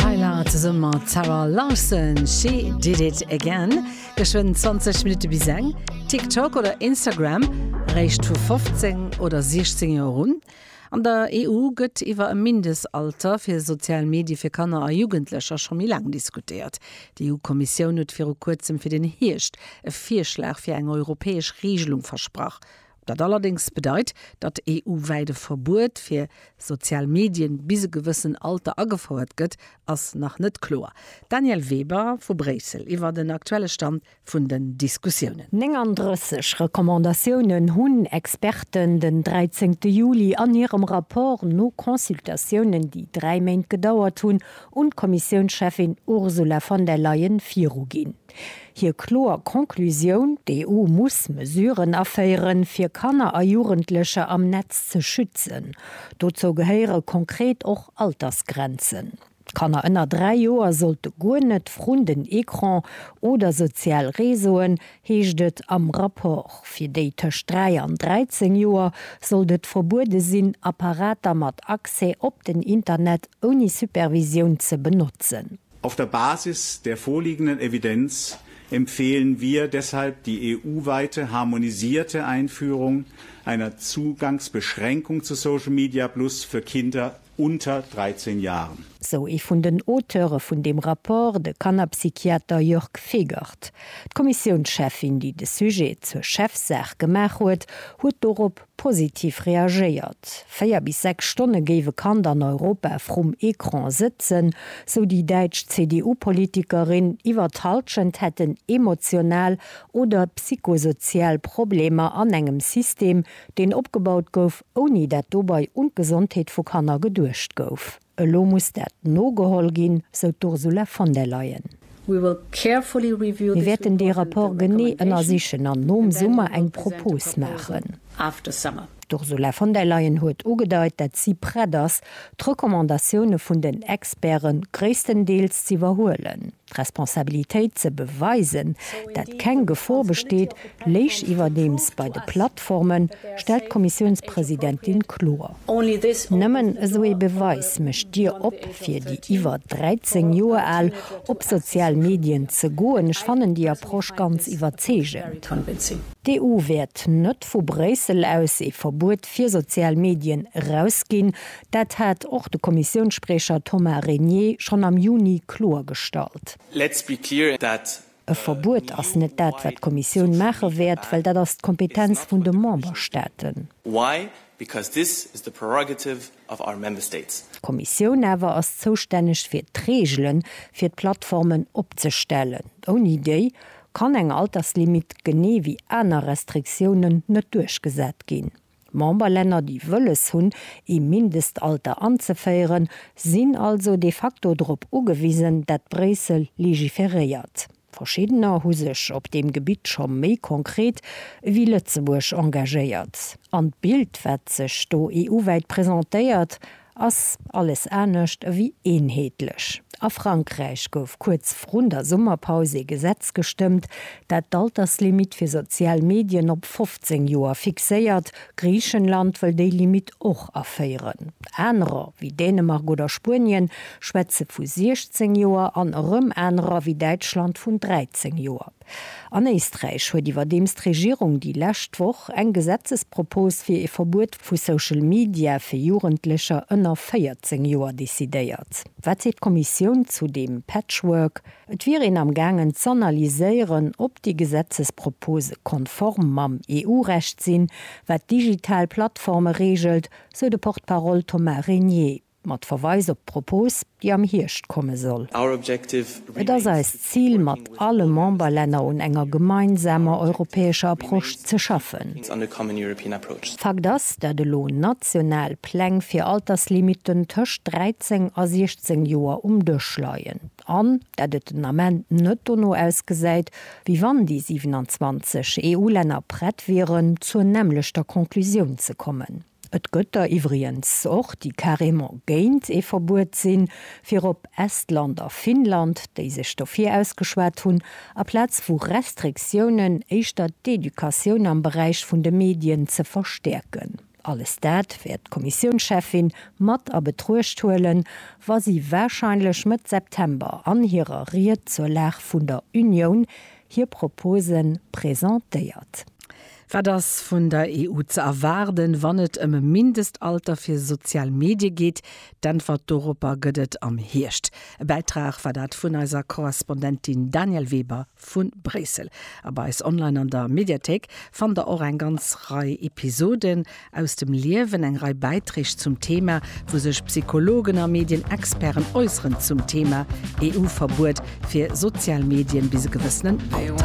Tyla zesumme mat Zara Larsson, She Did It Again. Geschwënn 20 Minutte bis eng. TikTok oder Instagram eréischt vu 15 oder 16 Joer un. An der EU gëtt iwwer e Mindestalter fir sozial Medie fir Kanner a Jugendlecher scho méi laang diskutéiert. D'EU-Kommissioun huet viru kuerzem fir den Hierscht e Virschlag fir eng europäesch Reegelung versprach. Dat allerdéngs bedeit, datt EU-wäit e Verbuet fir sozial Medien bis e gewëssen Alter agefouert gëtt, ass nach net kloer. D'Danièle Weber vu Bréissel iwwer den aktuelle Stand vun den Diskussiounen. 39 Recommandatiounen hunn Experten den 13 Juli an hirem Rapport no Consultatiounen, déi dräi Méint gedauert hunn, un d'Kommissiounscheffin Ursula von der Leyen viruginn. Hir kloer Conclusioun, D'EU muss Mesuren aféieren, fir Kanner a Jugendlecher am Netz ze schützen. Dozou gehéiere konkret och Altersgrenzen. Kanner ënner dräi Joer sollte guer net vrun den Ecran oder sozial Réseauen, heescht et am Rapport. Fir déi tëscht dräi an 13 Joer sollt et verbuede sinn, Apparater mat Accès op den Internet ouni Supervisioun ze benotzen. Auf der Basis der vorliegenden Evidenz empfehlen wir deshalb die EU-weite harmonisierte Einführung einer Zugangsbeschränkung zu Social Media Plus für Kinder unter 13 Jahren. Sou ee vun den Auteure vun deem Rapport, de Kannerpsychiater Jörg Fegert. D'Kommissiounscheffin, déi de Sujet zur Chefsaach gemaach huet, huet dorop Positiv reagéiert. Véier bis sechs Stonne géif e Kand an Europa vrum Ecran sëtzen, sou déi däitsch CDU-Politikerin. Iwwer d'Hallschent hätten emotional oder psychosozial Problemer an engem System, deen opgebaut gouf, ouni dat dobei un d'Gesondheet vu Kanner geduecht gouf. Elo muss dat nogeholl ginn, sou d'Ursula von der Leyen. Mir wäerten dee Rapport genee ënnersichen an nom Summer eng Propos maachen. D'Ursula von der Leyen huet ugedeit, dat si prett ass, d'Recommandatioune vun den Experte gréisstendeels z'iwwerhuelen. D'Responsabilitéit ze beweisen, dat keng Gefor besteet, léich iwwerdeems bei de Plattformen, stellt d'Kommissiounspresidentin kloer. Nëmmen esou ee Beweis mécht d'Dier op fir déi iwwer 13 Joer al, op sozial Medien ze goen. Ech fannen déi Approche ganz iwwerzeegend. D'EU wäert net vu Bréissel aus ee Verbuet fir sozial Medien erausginn. Dat hat och de Kommissiounsspriecher Thomas Régnier schonn am Juni kloergestallt. E Verbuet ass net dat, wat d'Kommissioun maache wäert, well dat ass d'Kompetenz vun de Memberstaaten. D'Kommissioun awer ass zoustänneg fir d'Reegele fir d'Plattformen opzestellen. Ouni déi kann eng Alterslimit, genee wéi aner Restriktiounen, net duerchgesat ginn. D'Memberlänner, déi wëlles hunn, ee Mindestalter anzeféieren, sinn also de facto drop ugewisen, dat Bréissel legiferéiert. Verschiddener hu sech op deem Gebitt scho méi konkret ewéi Lëtzebuerg engagéiert. An d'Bild, wat sech do EU-wäit presentéiert, Ass alles anescht ewéi eenheetlech. A Frankräich gouf kuerz vrun der Summerpaus ee Gesetz gestëmmt, dat d'Alterslimitt fir sozial Medien op 15 Joer fixéiert. Griichenland wëll déi Limitt och aféieren. Anerer, wéi Dänemark oder Spuenien, schwätze vu 16 Joer an erëm anerer, wéi Däitschland, vun 13 Joer. An Éisträich huet iwwerdeems d'Regierung déi lescht Woch eng Gesetzespropos fir ee Verbuet vu Social Media fir Jugendlecher ënner 14 Joer decidéiert. Wat seet d'Kommissioun zu deem Patchwork? Et wier een am gaangen z'analyséieren, ob déi Gesetzespropose konform mam EU-Recht sinn, wat digital Plattforme reegelt, sou de Porte-parole Thomas Régnier. Mat Verweis op d'Propos, déi am Hierscht komme soll. Et ass eist Zil, mat alle Memberlänner un enger gemeinsamer europäescher Approche ze schaffen. Fakt ass, dat elo national Pläng fir Alterslimiten tëscht 13 a 16 Joer um Dësch leien an dat et den Ament net dono ausgesäit, wéi wann déi 27 EU-Länner prett wieren, zur nämmlechter Conclusioun ze kommen. Et gëtt der iwwriens och, déi carrément géint ee Verbuet sinn, virop Estland a Finnland, déi sech dofir ausgeschwat hunn, aplaz vu Restriktiounen éischter d'Educatioun am Beräich vun de Medien ze verstäerken. Alles dat wäert d'Kommissiounscheffin mat a Betruecht huelen, wa si warscheinlech Mëtt September an hirer Ried zur Lag vun der Unioun hir Propose presentéiert. Wat ass vun der EU ze erwaarden, wann et ëm e Mindestalter fir sozial Medie geet? D'Äntwert doropper gëtt et am Hierscht. E Bäitrag war dat vun eiser Korrespondentin Danièle Weber vu Bréissel. A bei eis online an der Mediathéik fannt der och eng ganz Rei Episoden Aus dem Liewen, eng Rei Bäiträg zum Thema, wou sech Psychologen a Medien-Experten äusseren zum Thema EU-Verbuet fir sozial Medien bis e gewëssenen Alter.